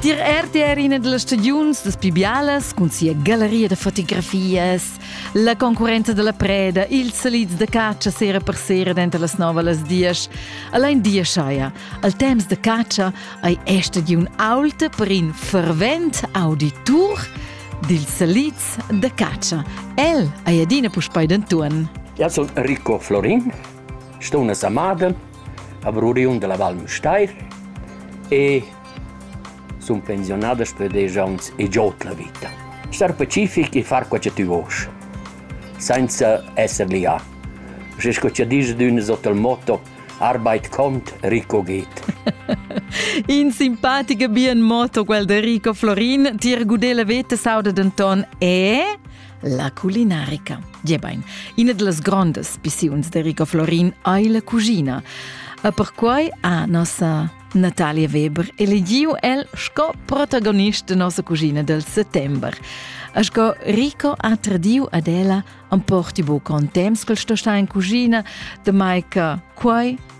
Dir RTR ina delle stagiuns das Pibialas cun sia galleria da fotografias, la concurrenta della preda, ils salids da catscha sera per sera denter las nove las dies. Allein dia schaia, al temps de catscha ei è stagiun aulta per in fervent auditur dil salids de catscha. El ei adina puspei d'Anton. Ja, sono Rico Florin, sto una samada a Bruriun della Val Müstair e sun pensionadas per desch ans e giot la vita. Star pacific e far quel che tü vosch, senza esser lià. Se sco cha disch d'ün sot il motto, arbeit kont, Rico geht. In simpatica bien motto quel de Rico Florin, tir gudele vete sauda denton e La culinarica, diebain, ina da las grondas pissiuns de Rico Florin ei la cuschina. E perquai ha nossa Natalia Weber elegiu el sco protagonist de nossa cuschina del settember. E sco Rico ha tradiu ad ella, am porti bu con temps quel sto sta in cuschina, de mai che quai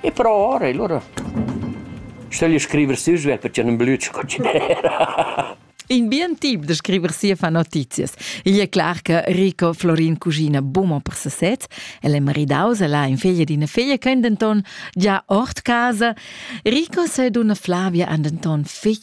E però ora, e lura stögl io scriver sü svelt perche nun blüd sco chi d'eira. In bien tip da scriver sia fa notizias. Igl è clar che Rico Florin cuggina bumo per sesez. El è maridaus, el ha in figlia d'ina figlia che è denton già ord casa. Rico se d'una Flavia ha denton fitg